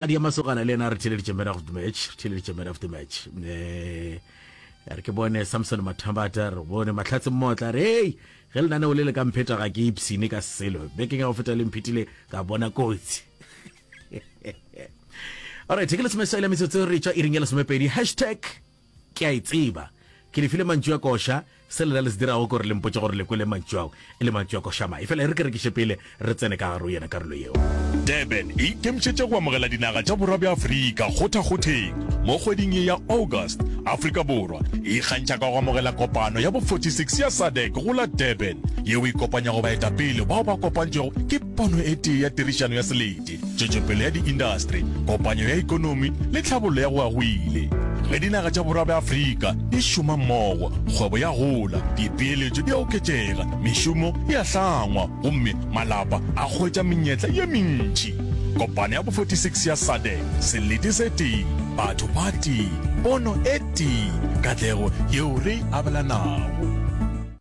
Adi ya masogana le yena re theleditše man of the match re theleditše man of the match um re ke bone samson mathambata re bone mahlatse mmotla re ei ge lenaneo le le ka mpheta ga ke ipsine ka selo bekeng ya go feta le mphetile ka bona kotsi alright ke lesome sa ile metsotso re tšwa iring ya lesomepedi hashtag Ke a e tseba. Ke le file mantšu a koša. Se lena le se dirago ke gore le mpotše gore le kwele mantšu ao e le mantšu a koša mae. Efela e re ke rekiše pele re tsene ka gare go yena karolo yeo. Durban e ikemišetše go amogela dinaga tša Borwa bja Afrika kgothakgotheng mo kgweding ye ya August. Afrika Borwa e ikgantšha ka go amogela kopano ya bo 46 ya SADC go la Durban, yeo e kopanyago baetapele bao ba kopantšwego ke pono e tee ya tirišano ya selete. tšwetšopele ya diindastri, kopanyo ya ikonomi le tlhabollo ya go agwile. Ge dinaga tša Borwa bja Afrika di šoma mmogo, kgwebo ya gola, dipeeletšo di a oketšega, mešomo e a hlangwa gomme malapa a hwetša menyetla ye mentši. Kopano ya bo 46 ya SADC, selete se tee, batho ba tee, pono e tee, katlego yeo re e abelanago.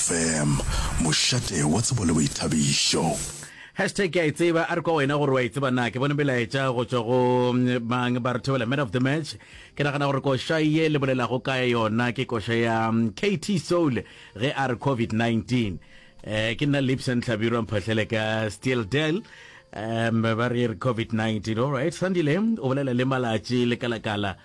Fm, mošate wa tsebo le boithabišo. Hashtag ke a e tseba a re kwa wena gore wa e tseba na ke bone melaetša go tšwa go mm, mang ba re thobela man of the match ke nagana gore koša ye le bolelago ka yona ke koša ya mm, kt soul ge a re covid-19 um eh, ke nna lips and tlhabirwa mphahlele ka steel del um ba re e re covid-19 allright sandile o bolela le malatši le kalakala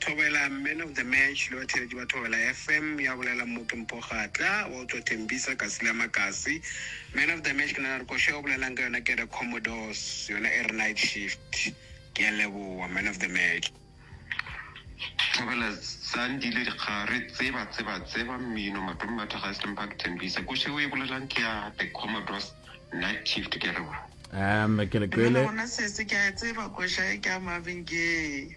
Thobela Man of the Match le batheeletši ba Thobela FM, ya bolela Mmoki Mpogatla, wa utswa Thembisa, Kasi le Amakasi. Man of the Match ke nagana gore koša e o bolelang ka yona ke ya the Commodores, yona e re Night Shift. Ke a leboga Man of the Match. Thobela Zandile Dikgare, Tseba Tseba Tseba, Mmino, Matommy Mathagase le Mphato Thembisa. Koša e o e bolelang ke ya the Commodores, Night Shift. Ke a leboga. Um, ke le Nna kwele. gona sese ke a e tseba koša e ke a Marvin Gaye.